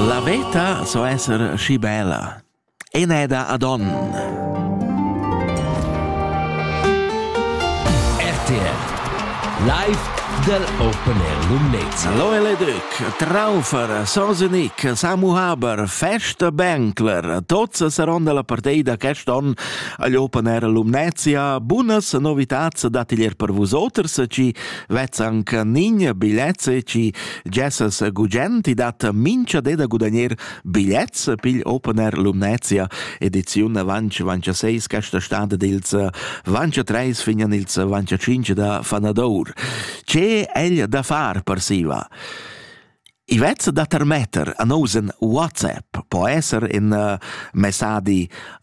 La veta so esser schi bella. Eneda adon. RTR Live del Open Air Lumnezza. Lo Eledüc, Traufer, Sosenic, Samu Haber, Fest Benkler, tots saron dalla partei da quest on agl Open Air Lumnezia. Bunas novitats datiglier per vusoters, ci vezzanc nign bigliets, ci Gessas gugent, i dat mincha de da gudagner bigliets pigl Open Air Lumnezia, ediziun avanc vancha 6 questa stad dils vancha 3 fin an ils vancha 5 da Fanadour. Ce egl da far per siva? Ivetz da termetter an osen WhatsApp po esser in uh, messadi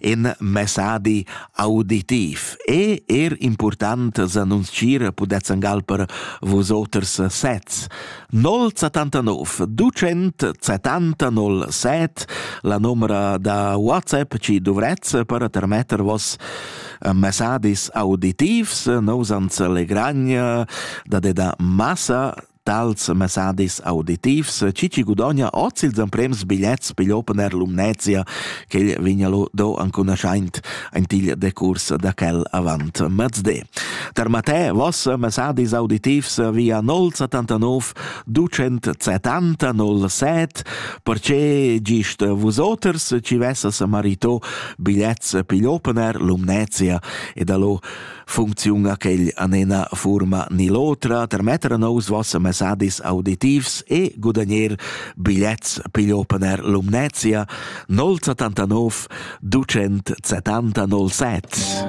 in messadi auditiv e er important s'annunzchir pudezzan galper vos oters sets. 079 279 7 la numera da WhatsApp ci dovrez per termetter vos messadis auditivs nos ans legragn da de da massa Tals mesadis auditivs chi chi gudogna hoz ils emprems bigliets pigl Open Air Lumnezia ch'el vegna lo do ancunaschaint aint il decurs da quel avant mezde. Per Matè, voss mesadis auditivs via 079 270 07 perche gist vus oters ci vessas marito bigliets pigl Open Air Lumnezia e da lo Funcziun a quel an ena furma ni l'otra, termetter a nous voss messadis auditivs e gudagner bigliets pigl opener Lumnezia 079 270 07.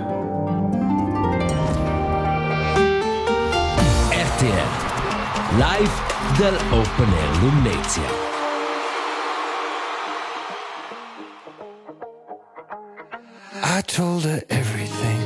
RTR Live del Open Air Lumnezia. I told her everything